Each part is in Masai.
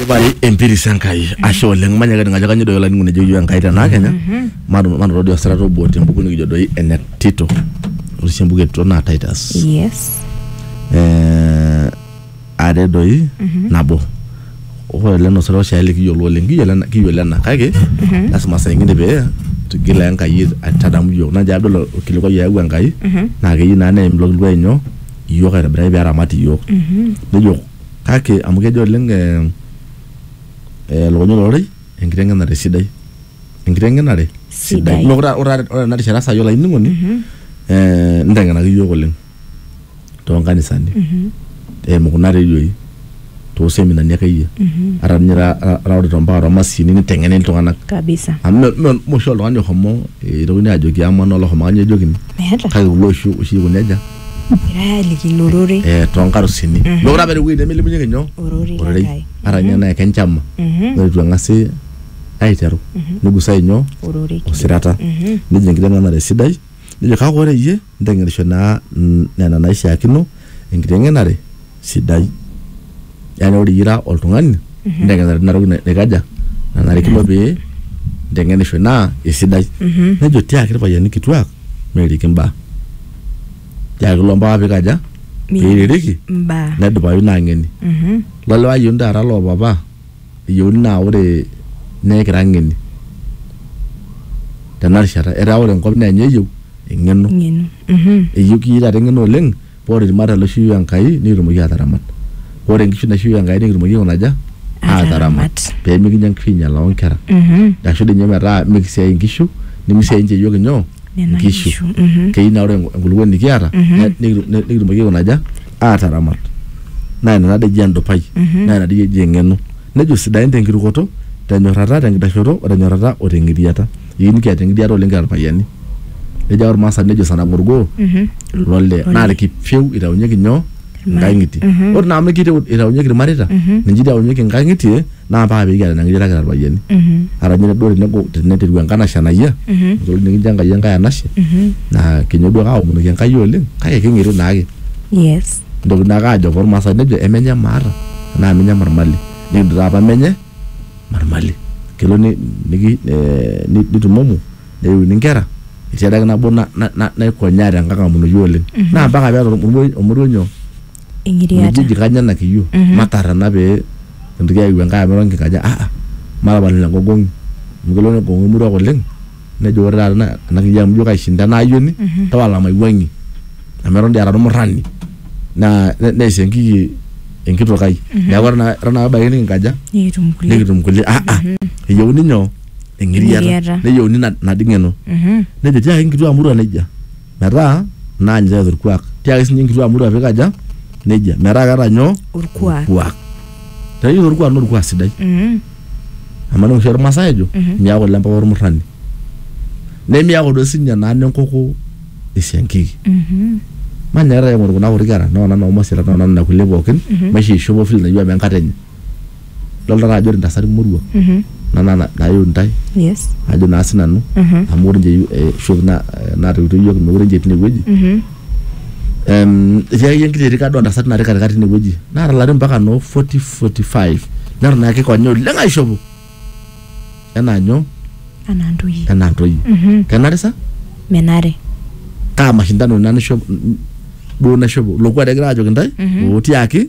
Ibari empiris Enkai ashe oleng manya kati ngajo kanyo doi olainingu nejo yiu Enkai tenaa kenya matu matu todua sarata obo tembuku nikijo doi ene Tito ore sii embuku e Tito naa Titus Yes. eh, are doi nabo ore ele nosero oshiake likiyiolo oleng kiyiolo ena- kiyiolo ena kake lasima saa ingine pee tigila Enkai aitadamu yiok naa njo adol orkilikuai oyawua Enkai naa keyieu naa neim ilo kilikuai nyoo iyiook aitobiraki pee eramat iyiook. nejo kake amu kejo oleng elukunya olororei enkitengenare sidai. enkitengenare sidai. neeku ore tena rishata sai olaininingoni. nitengenaki iyiook oleng too nkanisani. eimu kuna redioi. too seminani akeyie mhm. ata ninye raorito mpaka too masini niteng'eni iltung'anak kabisa amu moshi oltung'ani ohomo eh, itokini ajoki ama naa olohomo kanyoo ejokini kake kulo oshi oshi ikuni aja egirai aliki ilo rorei eh, eh, too nkarusini mhm. mekure apa ewueji nemilimunyeki nyoo ororei ata ninye mhm. naa kenchama ore itu eng'asi aiteru nigusai nyoo osirata nejo enkiteng'enare sidai nejo kake ore iyie Inteng'enisho naa nena naishiakino enkiteng'enare sidai. Yani ore iyie ira oltung'ani, inteng'enare tina toki naikaja, nanarikino pee inteng'enisho naa esidai. Nejo tiaki irpayiani kituak meiriki imbaa. Tiaki ilo mpapa pikaja, piririki, Mbaa. nedupayu ina ang'eni. Lo lewa ayioni taata loo papa eyieuni naa ore naa ekira ng'eni tena rishata etaa ore enkop naa enye eyieu eng'eno ng'eno Mhm. eyieu kii taata eng'eno oleng paa ore ilmareita loishooyio Enkai nikitumoki aataramat ore inkishu naishooyio Enkai nikitumoki aikuna aja Aataramat. aataramat pee mikinya inkishu ainyialaa onkera Mhm. ashu dii ninye metaa mikisiaai inkishu nimisiaai ninche iyiook inyoo Nena inkishu kishu. Mhm. keyieu naa ore enkulupuoni nikiata Mhm. ne- nikitu- ne- nikitumoki aikuna aja aataramat naa ina tadii eji endupai naa ina dii eji eng'eno nejo sidain tenkirukoto tenyorrata tenkitashoto o tenyorrata o teng'iriata eyieu nikiata eng'iriata oleng kira irpayiani nejo ake ormaasani nejo sara ng'orgoo lole naa irkipieu itaunyeki nyoo inkang'itie ore naa amu kite itaunyeki irmareita ninche itaunyeki inkang'itie naa paa pee kiata ina ng'iriata kira irpayiani. Ata ninye duo tenegol teneteru enkanashe anayia, enkitoli nikincho Enkai enkae anashe naa kinyo duo ake aomonoki Enkai oleng kake king'iri naake. Yes. Kintoki naake aajo toormaasai nejo emenye maata naa emenye marmali. Nikijo taa apa menye marmali. Kelo ni niki eh nitumomo neyiuni inkera etii adake nabo naikonyaa tenkang amonoki oleng. Naa mpaka pee eeta olmoruo nyoo? Eng'iriata. Mijiji kanya ena kiyio matar ena pee kintoki aaiu enkae amu eton kikaja ah ah matapal ina gogong'i amu kelo negogong'u emoruak oleng nejo ore taata ena ena kiyio amu ijo kaishinda ena ayioni tapala maiwuang'ie amu eton dii ara ormurrani naa ne- neisho enkiki enkitok ai neeku eton ake eton ake ebaiki nikinkaja Nikitum kulie. nikitum kulie ah ah eyieuni nyoo eng'iriata Eng'iriata. neyieuni ina ina dii ng'eno Mhm. nejo tiaki inkituak murua nejia metaa naa ninche eeta orkuak tiaki sinye nkituak moruak pikaja nejia metaa keeta nyoo Orkuak. orkuak tayiolo orkuak naa orkuak sidai Mhm. amu ena oshi ormasae ejo Mhm. miaku ile mpapa ormurrani nemiaku duo sinye naa nenkoko esiankiki Mhm. manyaakita aing'oru kuna kuti kera noo nanu omasirat noo nanu nena kulie pookin Mhm. maisho eishopo vile nayieu amu enkata enye idolta taa ajo ore intasati moruak kuna naa nayieu intae yes ajo naa sinanu amu ore ninche eh, shoki na- eh, naatoiwutuo yiok mekure ninche etii inewueji Em, etii akeyie enkiti erika duo ontasati natii katikati inewueji naata ilarin mpaka noo 40 45 neton ake kikonya oleng aishopo enaa nyoo anaa ntoyie enaa ntoyie kenare sa menare kaa mashindano ina nisho duo naishopo lokuat egira ajoki intae otiaki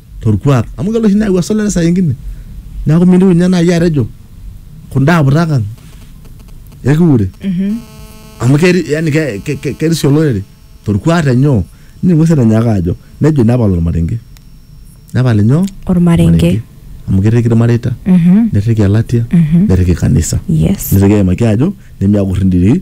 torkuak amu kelo oshi neyau esolare saa ingine neaku mintieu ninye naaji atejo kunda aputak ang ekiure amu keri- yani ke- ke- ke- kerisio olorere torkuak tenyoo nining'u sii etonyaaka ajo nejo nepal ormarenge nepal inyoo Ormarenge. amu kerriki irmareita Mhm. nerriki elatia nerriki kanisa Yes. nitoki aimaki ajo nemiakurr indiri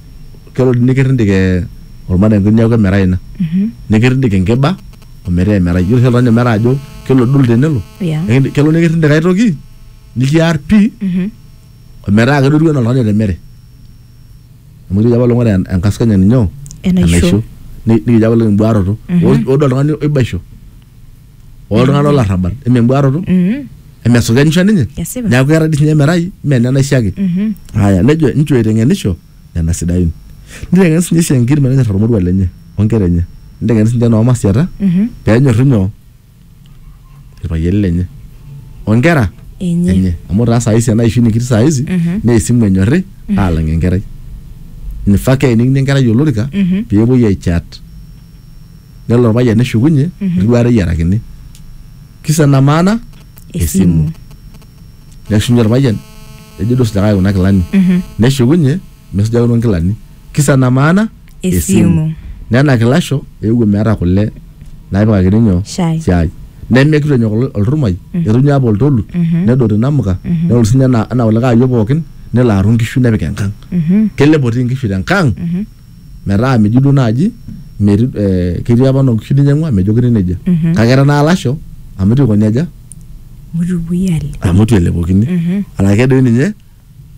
kelo dii nikirrindik eh, ormarenke niaku emerai ina nikirrindik enkiba ometaa emerai yiolo oshi oltung'ani omeraa ajo kelo dul tenelo Yeah. Ekindi- kelo nikirrindik ae toki nikiar pii ometaa kedotu enaa oltung'ani otemere amu etejo apa olong'ore en- enkaskanya ninyo Enaisho. Ni- nikijo apa oleng embuaroto Ore- ore oltung'ani oibaisho oltung'anak lolarrabal emembuaroto Mhm. emesukenisho ninye Kesipa. neeku keeta dii sinye emerai mee nena ishe ake Mhm. haya nejo inchoo aiteng'enisho nena sidain niteng'en sinye isiankir menenyor ormorua lenye onkera enye niteng'en sinche noomasiata Mhm. peenyorru nyoo irpayiani lenye onkera Enye. enye amu taa saa hizi ena ishu nikitii saa hizi Mhm. naa esimu enyorri aalang enkerai nifaa keenikini enkerai olorika Mhm. peepuoi aichat nelo orpayian neshukunye neduaare eyiarakini kisa ena maana esimu neshunye orpayian nejo duo sinyakaki kuna kilani neshukunye mesujakino nkilani kisa ena maana Esimu. nena kilasho eewuo meeta kule naipikakini nyoo Shai. shai nemekitu enyok ol- olturmai etu ninye apa oltolu nedot inamuka nelo sinye anaa anaa kulikae ayiok pookin nelo aru nkishu nepik enkang kelepo tii nkishu tenkang metaa meji duo naaji meti- eh, ketii apa noo nkishu ninyang'ua mejokini nejia Mhm. kake era naa lasho amu itu ikoni aja Mutupuoi ale. amu itu elepokini Mhm. arake doi ninye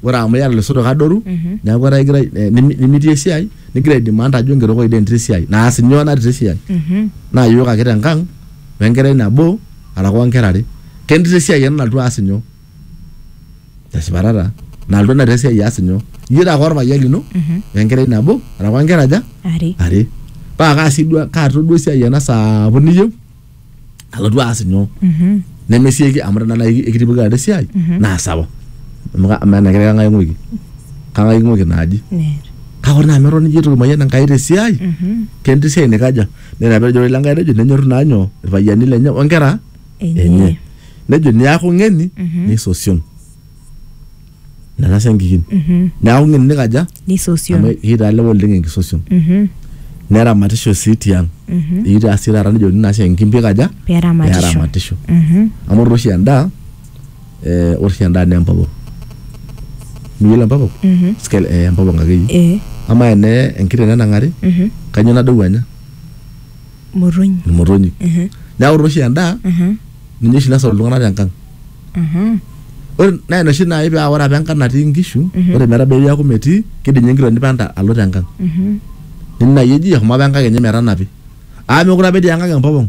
ore amu iyata losotok adoru Mhm. neeku etaa igira eh, nimi- nimitii esiai nigira aidimanda ajo ngeroko idee ntii esiai naas nyoo natii esiai Mhm. naa yiok ake tenkang wenkerai nabo araka onkera are kentii esiai ena nalotu aas nyoo tesipa taata nalotu natii esiai aas nyoo iyie taake orpayian lino wenkerai nabo araka nkera aja Are. are paa kaasi duo kaata duo esiai ena sapuk niyieu alotu aas nyoo Mhm. nemesieki amu tenaa nai ekitipika taata esiai naa sawa amu ka- amaa ena kerai kang'ae ing'uiki kang'ae ing'uiki naaji Neer. kake ore naa amu eton iyie itu kimayian Enkai tesiai Mhm. ketii esiai nikaja nena pejo ore Enkai nejo nenyorru naa nyoo irpayiani lenye onkera enye. nejo niaku ng'eni nisosion nena siankikin niaku ng'eni nikaja amu nisosion kitaa lewa oleng enkisosion neramatisho sii tiang ikitaa sii taata nejokini naa siankikin pikaja peramatisho peramatisho amu ore oshi endaa eh, ore oshi endaa naa empopong miyiolo empopong Sikel- eh, empopong akeyie Eh, amaa ene enkiteng nenang'ari kanyio nadou anya motonyi imotonyi Ehe, neeku ore oshi endaa ehe, ninye oshi nasot iltung'anak tenkang ehe. ore naa ina oshi naaji paa ore apa enkang natii inkishu Mhm. ore metabau eaku metii kidim ninye enkitoo nipanta alo tenkang Mhm. nini naaji eji eshomo apa enkang enye metanapi aa mekure apa etii enkang empopong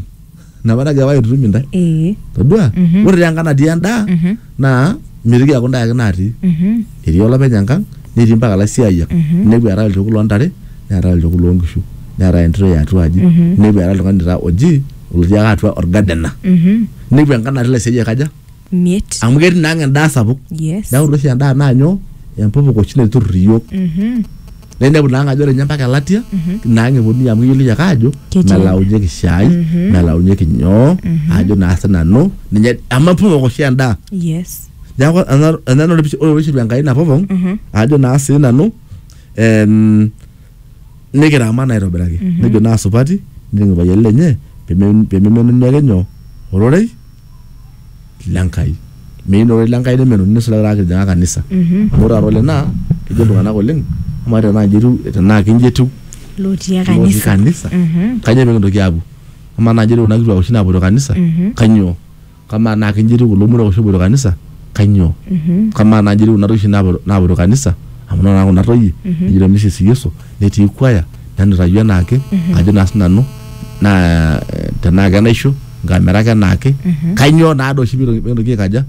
napa nagira apa aitutum intae Ee. todua Mhm. ore taa enkang natii endaa Mhm. naa mitoki aaku ndae ake natii Mhm. etii olopeny enkang netii mpaka laisiayiak Mhm. nepu eetae olchokut loo ntare neetae olchokut loo nkishu neetae entito e atua aji Mhm. nepu eetae oltung'ani taa oji olotii ake atua orgadena Mhm. nepu enkang natii laisiayiak aja Miet. amu ketii naa ang endaa sapuk Yes. neeku ore oshi endaa naa nyoo empopok oshi naiturrur iyiook Mhm. na inepu naanga ajo ore nye mpaka elatia naanga eponunui amu keyioloi ake ajo Ketii. melaunyeki shai melaunyeki nyoo ajo naa sinanu ninye amu epopong oshi endaa yes neeku ena- ena ore pishi- ore pishilu enkai napopong ajo naa sinanu em, nikiramat naa aitobiraki nejo naa supati nening irpayiani lenye peme- pememenuni ake nyoo ororei le Nkai. Meyieu ore le Nkai nemeloni nisulaki taata kitijing'a kanisa. Amu ore taata ole naa kejo iltung'anak oleng amaa tenaa nji etiu tenaa kinji etiu Lotii lotii kanisa. kanisa kanyoo pekintoki aapuo? Amaa naa nji etiu kuna kituak oshi naapuoito kanisa kanyoo? Kamaa naa kinji etiu kulo moruak oshi oopuoito kanisa? kanyoo kamaa naaji etii kuna toishi naapo- naapoto kanisa amu ore naa kuna toyie nejito misis yesu netii kwaya nenutayu enaake ajo naa sinanu naa eh, tenaa kenaisho nkamera ake enaake kanyoo naa doi oshi pito- pikintoki aikaja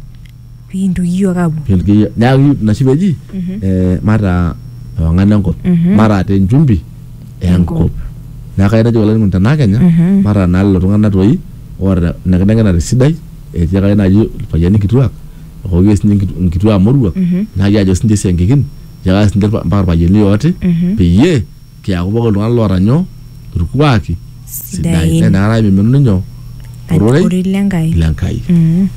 pikintoki iyiook aapuo Pikintoki- neeku ina oshi peji eh, mataa ewang'an enkop mataa te nchumbi enkop neeku kayieu najoki olainining'oni tenaa kenya mataa naa lelo tung'anak toi oota ina kiteng'enare sidai etiakaki naaji irpayiani kituak hoo kee sinye nkitu- nkituaa moruak naa kiajo sinche isiankikin etiakaki sinche irpa- mpaka irpayiani ooti peyie kiaku pooki iltung'anak loota nyoo irkuaki sidain Sidain. naa inakata imiminuni nyoo ororei ororei lenkai lenkai Mm.